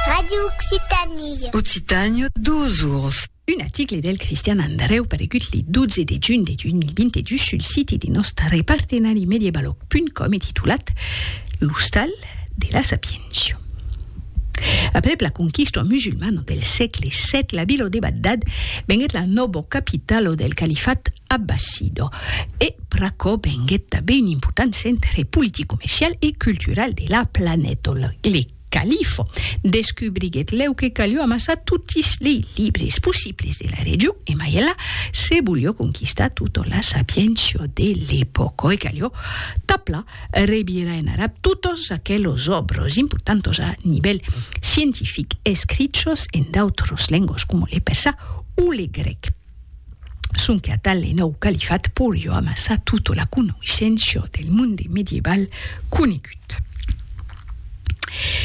Radio Occitanie. Occitània, dos ors. Un article del Cristian Andreu paregut le 12 de junh de 2022 sul siti de nòst repartenari mediebaloc.com e titulat L'ostal de la sapiéncia. Aprèp la conquista musulmana del sègle vii, la vila de Bagdad venguèt la nòva capitala del califat Abbassido, e pr'aquò venguèt tanben un important centre politic, comercial e cultural de la planeta. Le califo descubriguèt lèu que calió amassar totis lei libres possibles de la region e mai enlà se volió conquistar tota la sapiéncia de l'epòca e calió tapla revirar en arab totas aquelas òbras importantas a nivèl scientific escrichas en d'autras lengas coma le persà o le grèc. sonque atal le nòu califat porió amassar tota la conoisséncia del monde medieval conegut.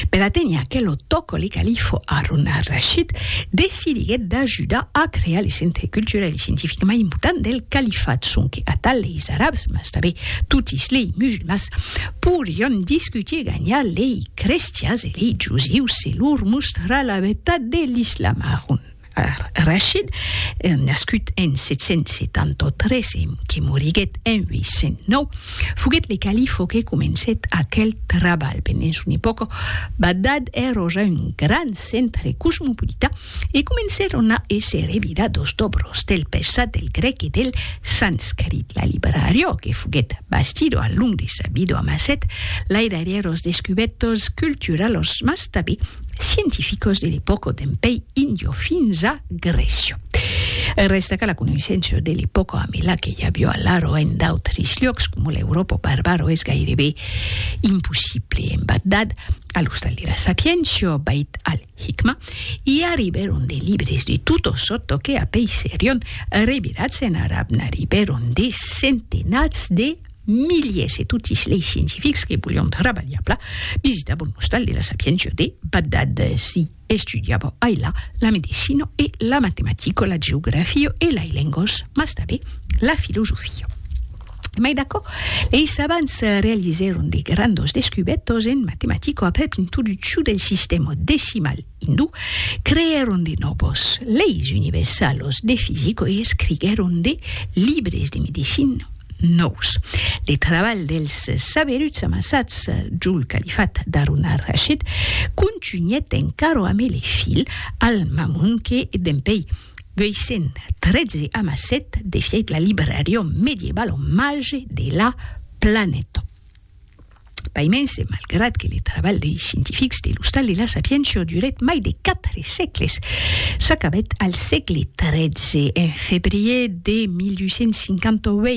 Per aténher aquel otòco, le califo Harun al-Rashid decidiguèt d'ajudar a crear le centre culturel e scientific mai important del califat, sonque atal leis arabs, mas tanben totis lei musulmans, porion discutir e ganhar lei crestians e lei jusius se lor mostrar la vertat de l'islam. Harun. Rachid, nascut en 773 e que moriguèt en 809, foguèt le califo que comencèt aquel trabalh. Pendent son epòca, Bagdad èra ja un grand centre cosmopolita e comencèron a èsser evidat dos dobros del persat, del grèc e del sanscrit. La librariá que foguèt bastida al long de sa vida amassèt lairarièros descubètos culturalos mas tanben scientificos de l'epòca d'en pei indio fins a Grecio. Resta que la conoissença de l'epòca a Mela que ja viu a l'Aro en d'autres llocs com l'Europa barbaro es gairebe impossible. En Bagdad, a l'ostal de la Sapientia, Beit al Hikma, i arribèron de libres de tota sòrta que apei serion revirats en arab, n'arribèron de centenats de Miliers e totis lei scientifics que volion trabalhar pla visita bon ostal de la sapiéncia de Bagdad. Si estudiava ai la, la medecina e la matematica, la geografia e lai lengas, mas tanbe la filosofia. Mai d'aquò, lei savants realizèron de grandas descubètas en matematica aprèp introduccion del sistèma decimal, Indu, creèron de nòvos leis universalos de fisico e escriguèron de libres de medicina nòus. Le trabalh dels saberuts amassats jol califat d'Harun al-Rashid contunhèt encara a mele fil al-Mamun que, dempèi 813, amassèt de fièch la librarion medievala omage de la planeta. Pas mens, e malgrat que le trabalh dei scientifics de l'Ostal de la Sapientia durèt mai de quatre sègles, s'acabèt al sègle XIII, en febrier de 1858,